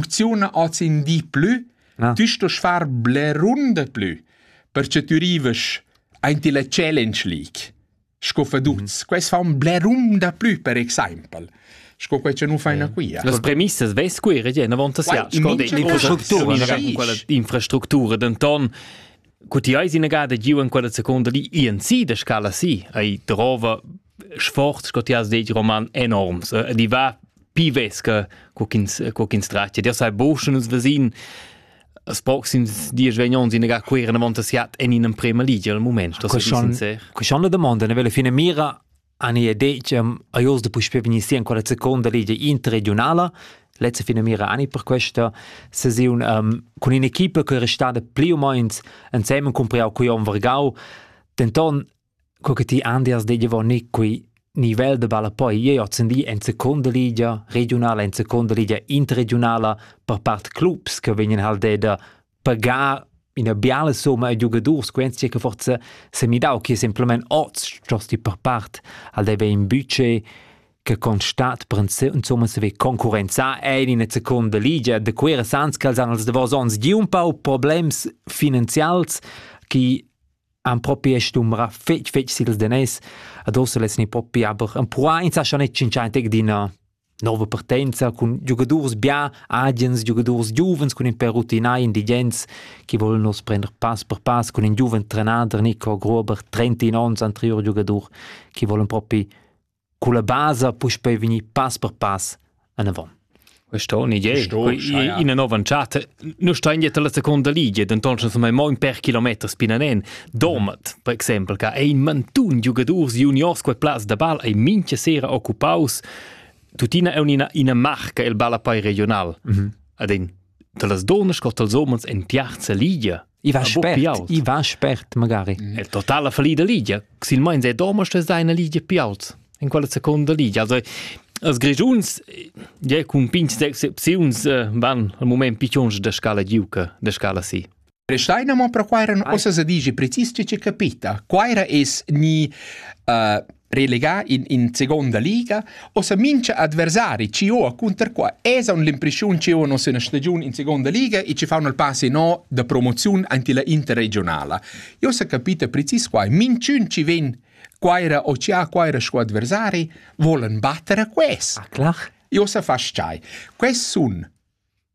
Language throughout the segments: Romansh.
funcziuna oz in di plü, ah. tü stost far blerun de plü, perche tü rivas aint la Challenge League sco feduts. Mm -hmm. Quest fa un blerun da plü, per exempel sco quei che nu faina quia. Las premissas vess qui regien avant sia sco d'infrastructura denton Cu ti eis inagada giu en quella seconda li INC da scala si, ei drova sforz sco ti has detg roman enorms ed i va pi vesca co ch'ins co ch'ins tratga. Dir sai boschen nus vesin as proxims dies vegnons in gar queren avant siat en in emprema ligia al moment. Das schon, schon la domanda, ne vele fine mira Ania Decem ei oz da puspei vegnir sia ancora seconda ligia interregiunala. Letzte finamira ani per questa sesiun um, con un'equipa che è restada pli o meno insieme con Priau Cuion Vargau. Denton, co che ti Andias de Giovanni qui nivel de balla poi ei ozendi en seconda ligia regionala, en seconda ligia interregionala per part clubs che vegnan haldeda pagar ina biala somma a giugadurs quenzia che forza semidau che simplement oz giasti per part al deve in budget che constat insomma se ve concurrenza en in seconda ligia de quera sans che han els davos ons gi un pau problems finanzials che han proprio stumbra fetg fetg sils denes adosso les ni proprio aber un pura in sa schon net cinquantic d'ina nova partenza cun giugadurs bia, agens giugadurs giuvens cun in per rutinai indigens che volen nos prender pass per pass cun in giuven trenader Nico Gruber, 31 onns anterior giugadur, che volen propi con la base puspei vegnir pass per pass en avant. Questa è un'idea, in nova charta Noi stein dietro la seconda ligia, denton schon mai mo in per kilometer spinanen. Domat, per exempel, che ein mantun giugadurs juniors quei plaz da ball ei mincha sera occupaus. Tutina è una, una marca il balla poi regional. Mm -hmm. Ad in, da las donas scott als omens en tiarza ligia. I va spert, i va spert magari. È totala fallida Lidia, silmains è domo ste seine Lidia più alts in quella seconda Lidia. Also als Grigiuns ja cun pinch d'excepziuns eh, van al moment piccions da scala giuca, da scala si. Restaina mo per quai eran ossa se dici precis che capita. Quaira es ni uh, relegà in, in seconda liga, ossa mincha adversari ci ho a cunter qua esa un l'impression ci ho nos üna stagiun in seconda liga e ci faun al passe no da promoziun anti la interregionala. Io sa capita precis qua, minchun ci ven Quaira o ci ha Quaira sco adversari volen battere quest. Ah, klar. Io sa fasciai. Quest sun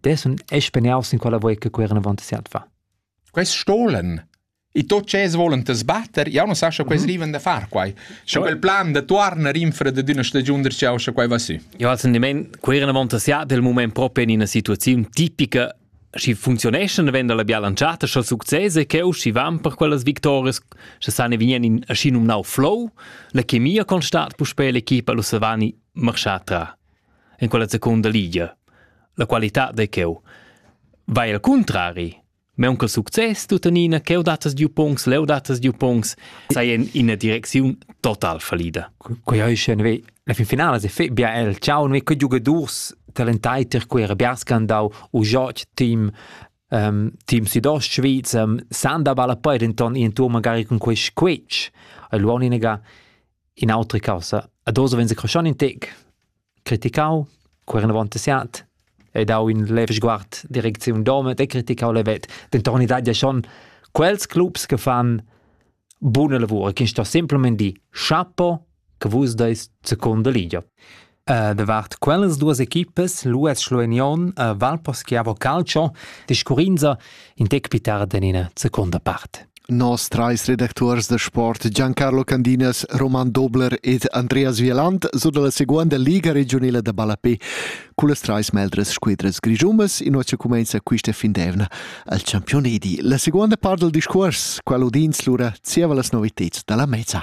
dessun espeniaus in quella voi che queran avant siat fa. Quest stolen E tot ce volen te sbatter, io non sa sche quei riven da far quai. Scho quel plan de tuarner infra de d'una stagiun der ciao sche quai va si. Io als in queran avant siat del moment proprio in una situazione tipica si funzioneschan venda la biala lanciata scho successe che u si van per quellas victorias sche sane vien in aschi num nau flow la chemia constat pu spe l'equipa lu savani marschà tra en quella secunda ligia. La qualità de cheu. Vai al contrari, meun che success tuttenina cheu datas di pungs, leu datas di pungs, sei in ina direcziun total fallida. Quei hai schon we la fin finale se fe bia el ciao noi che giocadors talentai ter quei rabia scandau u joc team um, team Südost Schweiz um, san da balla poi denton in tour magari con quei squetsch e luoniniga In'autra caussa, ad oz vegn secroschan in tec. Criticau, queren avant siat, e dau in lev sguard direcziun domet e criticau levet. Denton i dat ja schon quels clubs che fan buna lavura, che sto simplement di chapo che vus deis seconda ligia. Davart quellas duas equipas l'US Schlueignion e Valposchiavo Calcio discurrinza in tec pli tard en ina secunda part. Nos trais redacturs da sport Giancarlo Candinas, Roman Dobler ed Andreas Wieland su dalla seguonda Liga regiunila da ballapé cullas trais meldras squadras grischumas in oce cumenza quista fin d'evna al Championedi. La seguonda part del discuors, qual udins lura zieva las noviteds dalla mezza.